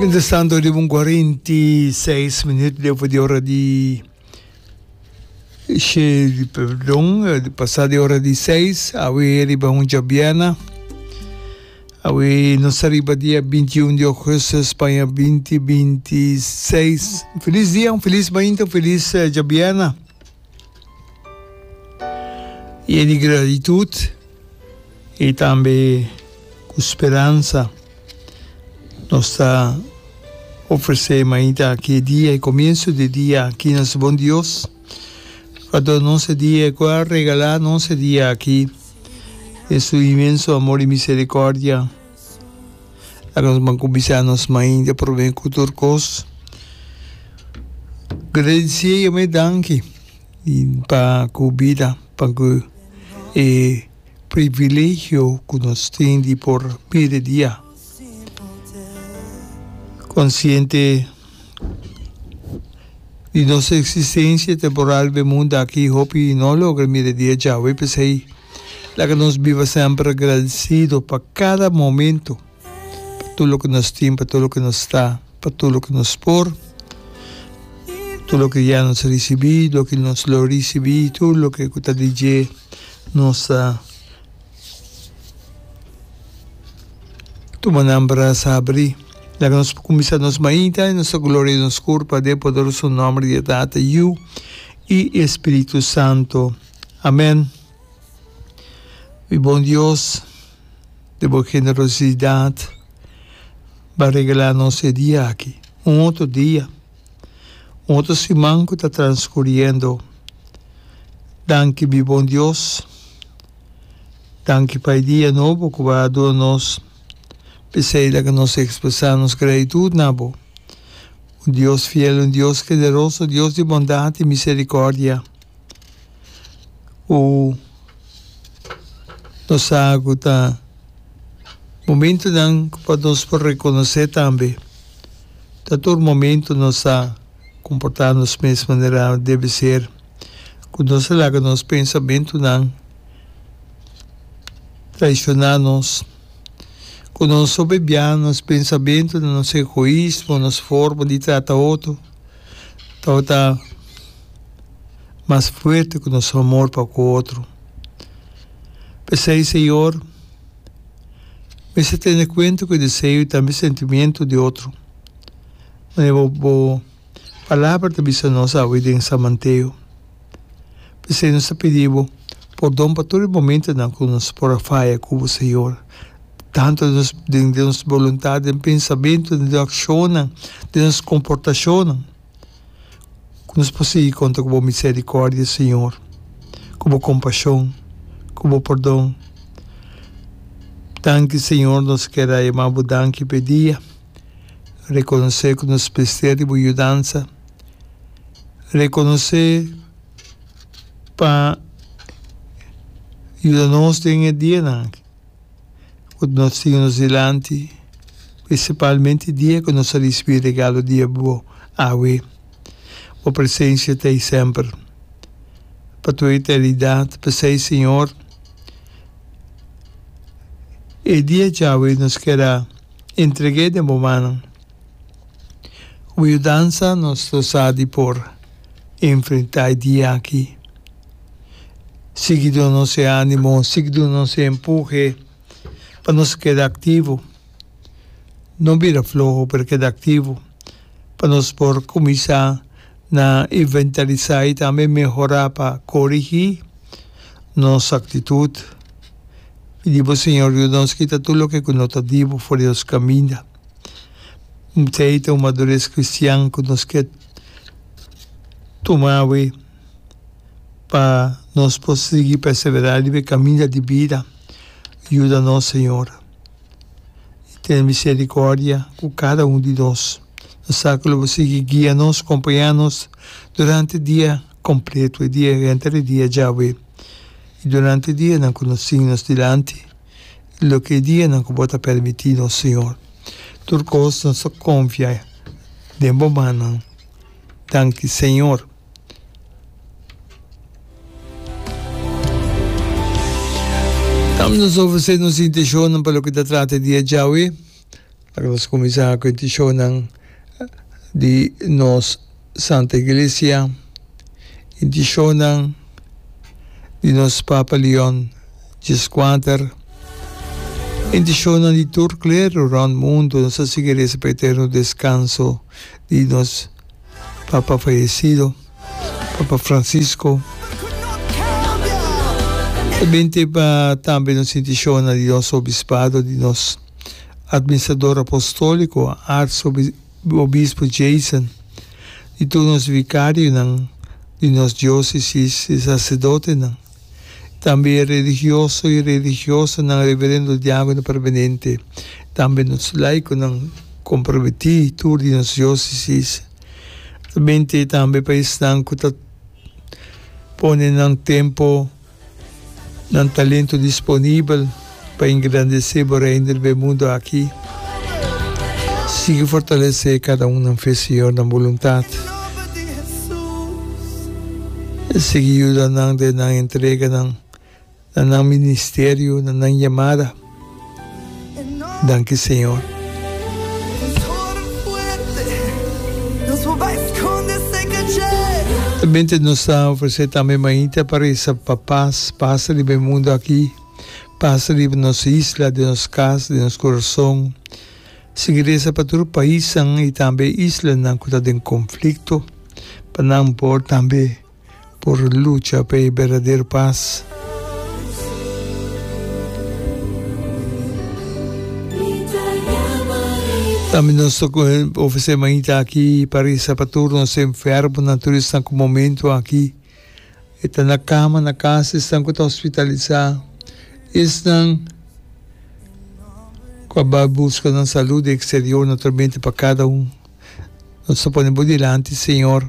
Mientras tanto riba un cuarenta y seis minuut deu por di ora di she perdon di pasa di ora di seis awe riba huncha biana awe nos ta riba dia binti y un di augusto Spanja binti binti seis un feliz dia un feliz mainta un feliz cha biana. Yen di gratitud y tambe cu speransa nos ta ofrece mainta aki e dia, e comienzo di e dia aki na su bon Dios pa dor nos e dia y cu a regala nos e dia aki den su inmenso amor y misericordia. A nos ban ku bisa nos mai ta prove ku tur kos gradisí yo me danki pa ku bida pa ku e privilegio ku nos tin di por bira dia konsiente di nos eksistensia temporal den mundu aki hopi no logra mira dia Yahwe p'esei Laga nos biba semper agradecido pa cada momento, pa tur loke nos tin, pa tur loke nos ta, pa tur loke nos por, tur loke ya nos ricibi, loke nos lo ricibi, tur loke cu ta di dje nos ta tuma nan brasa abri. Laga nos cuminsa nos mainta y nos ta gloria nos cur pa den poderoso nomber di e Tata, Yu y e Spiritu Santo. Amen. Mi bon Dios, den bo generosidad bo regala nos e dia aki, un otro dia, un otro siman cu ta transcuriendo. Danki mi bon Dios, danki pa e dia nobo cu bo a duna nos, p'esey laga nos expresa nos gratitud na bo, un Dios fiel, un Dios generoso, Dios di bondad y misericordia. ku nos sa ku ta momentunan ku pa nos por rekonosé tambe. Ta tur momentu nos sa komportá nos mes manera debe ser, ku nos a laga nos pensamentunan traishoná nos, ku nos soberbiá, nos pensamentunan, nos egoismo, nos forma di trata otro tabata. mas fuerte cu nos amor pa cu otro. P'esey, Señor, mester tene cuenta cu e deseo y tambe sentimiento di otro. Manera bo bo Palabra ta bisa nos awe den San Mateo. P'esey nos ta pidi bo pordon pa tur e momentonan cu nos por a faya cu bo, Señor, tanto den nos den nos boluntad, den pensamentonan, den accionnan, den nos comportacionnan. Ku nos por sigui konta ku bo miserikordia, Señor, ku bo kompashon, ku bo perdon. Danki, Señor, nos kier a yama bo danki pa e dia. Rekonosé ku nos mester di bo yudansa. Rekonosé pa yuda nos den e dianan aki. Ku nos siga nos dilanti, prinsipalmente dia ku nos a risibi regalo di Bo awe. Bo presensia ta ei semper, pa tur eternidat. P'esei, Señor, e dia djawe nos kier a entreg'é den Bo mannan. Ku Bo yudansa nos lo sa di por enfrentá e dia aki. Sigui duna nos e animo, sigui duna nos e empuje pa nos keda aktivo. No bira floho pero keda aktivo pa nos por kuminsá na inventarisá i tambe mehorá pa korigí nos aktitut. Pidi bo Señor yuda nos kita tur loke ku no ta dibu for di nos kaminda. Msei ta un madures kristian ku nos ke tuma awe. pa nos por sigui perseverá riba e kaminda di bida. Yuda nos, Señor, i tene miserikòrdia ku kada un di nos. Nos sa ku Lo por sigui guia nos, kompañá nos durante dia kompletu, e dia ku henter e dia djawe, i durante e dianan ku nos tin nos dilanti, i loke e dianan ku Bo ta permití nos, Señor. Tur kos nos ta konfia den Bo mannan. Danki, Señor. Dam nos ofrecer nos intencionnan pa loke ta trata e dia djawe. Ahora nos cuminsa cu e intencionnan di nos Santa Iglesia, intencionnan di nos Papa Leon Xvi, intencionnan di tur clero rond mundo nos ta sigui reza pa eterno descanso di nos Papa fayesido, Papa Francisco. E binte pa tambe nos intishonnan di nos obispado, di nos Administrador Apostolico, Arsobispo Jason, di tur nos vicarionan di nos diocesis, e sacerdotenan. Tambe e religioso i religiosanan reverendo di añanan permanente, tambe nos laikonan komprometí tur di nos diósesis. Mente tambe pa esnan ku ta pone nan tempu, nan talentu disponibel. pa engrandesé bo Reino riba e mundu aki. Sigui fortalesé kada un nan fe, Señor, nan boluntat. Sigui yuda nan den nan entreganan, na nan ministerio, na nan yamada. Danki, Señor. Ta bende nos ta ofresé tambe mainta pa resa pa pas, pas riba e mundu aki. Pasa riba nos isla, den nos kas, den nos kurason. Sigui resa pa tur paisnan i tambe islanan ku ta den konflikto pa nan por tambe por lucha pa e berdadero pas. Tambe nos ta ofresé mainta aki pa resa pa tur nos enfermonan, tur esnan ku momentu aki. E ta na kama na kas esnan ku ta hospitalisá, esnan ku a bai buska nan salú den eksterior. Nos ta mete pa kada un, nos ta pone bo dilanti, Señor.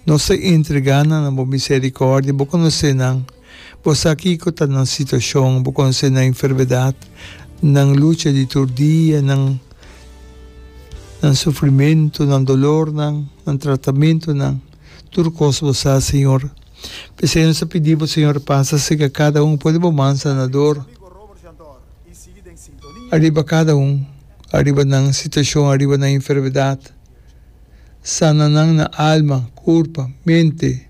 Nos ta entregá nan na bo miserikòrdia. Bo konosé nan, bo sa kiko ta nan situashon, bo konosé nan enfermedat, nan lucha di tur dia, nan nan sufrimentu, nan dolornan, nan tratamentunan. Tur kos bo sa, Señor. P'esei nos ta pidi bo, Señor, pasa serka kada un. Pone bo man sanador ariba kada un, ariba nan situashon, ariba nan enfermedat. Sana nan na alma, kurpa, mente,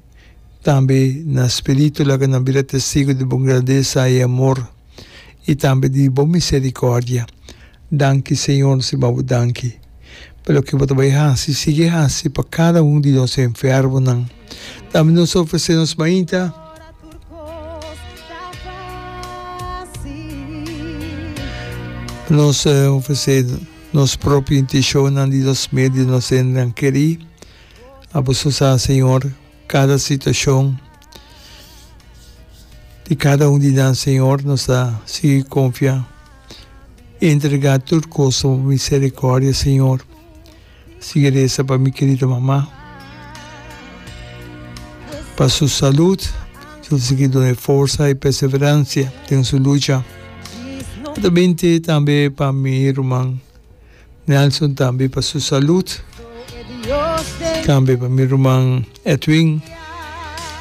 tambe na spiritu. Laga nan bira testigu di bo grandesa i amor. i tambe di bo miserikòrdia. Danki, Señor, si ba bo danki. Pero loke bo ta bai hasi, sigui hasi pa kada un di nos enfermonan. Tambe nos ta ofresé nos mainta. Nos ta ofresé nos propio inteshonnan di nos medu di nos hende nan kerí. Abos ta sa, Señor. Kada situashon di kada un di nan, Señor, nos ta sigui konfia i entregá tur kos na Bo miserikòrdia, Señor. Sigui resa pa mi kerido mama, pa su salut, su sigui duna e forsa i perseveransia den su lucha. Ato binte tambe pa mi ruman. Nelson tambe pa su salud, tambe pa mi ruman Edwin,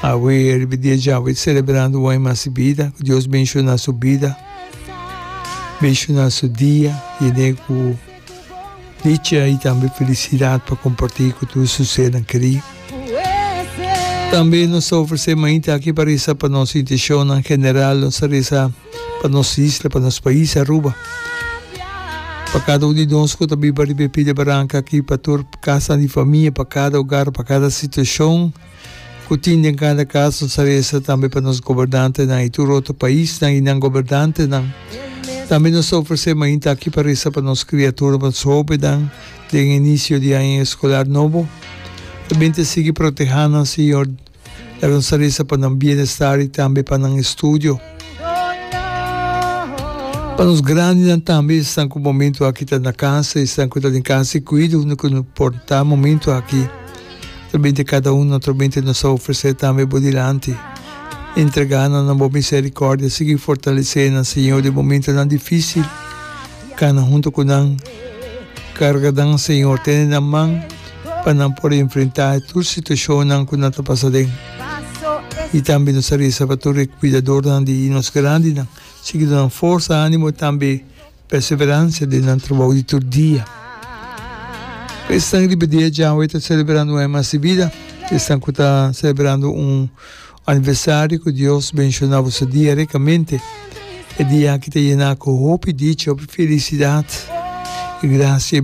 awe riba dia djawe celebrando un aña mas di bida, ku Dios benshona su bida, benshona su dia, yen'é ku dicha i tambe felisidad pa kompartí ku tur su sernan kerí. Tambe nos ta ofresé mainta aki pa resa pa nos intishonnan general, nos ta resa pa nos isla, pa nos pais Aruba. Pa kada un di nos ku ta biba riba e pida baranka aki, pa tur kasanan di famia, pa kada ogar, pa kada situashon ku tin den kada kas, nos ta resa tambe pa nos gobernantenan i tur otro paisnan i nan gobernantenan. Tambe nos ta ofresé mainta aki pa resa pa nos kriaturnan, pa nos hobennan den e inisio di aña eskolar nobo. Ta bini ta sigui protehánan, señor. Era un salista pa nan bienestar i tambe pa nan estudio. Pa nos grandinan tambe, esnan ku momentu aki ta na kasa, esnan ku ta den kasa i kuido hunde ku no por ta momentu aki. Atrabente kada uno, atrabente nos ta ofresé tambe bo dilanti. Entregá nan na bo miserikordia, sigui fortalesé nan, Señor, den momentunan difísil. Kana huntu ku nan, karga nan Señor tene nan man pa nan por enfrentá e tur situashonnan ku nan ta pasa den. I tambe nos a resa pa tur e kuidadornan di nos grandinan, sigui duna nan forsa, ánimo i tambe perseveransia den nan trabou di tur dia. Pa esnan riba dia djawe ta selebrando un aña mas di bida, pa esnan ku ta selebrando un Aniversario cu Dios benshona bo su dia ricamente. E dia aki ta yena cu hopi dicha, hopi felicidad y gracia.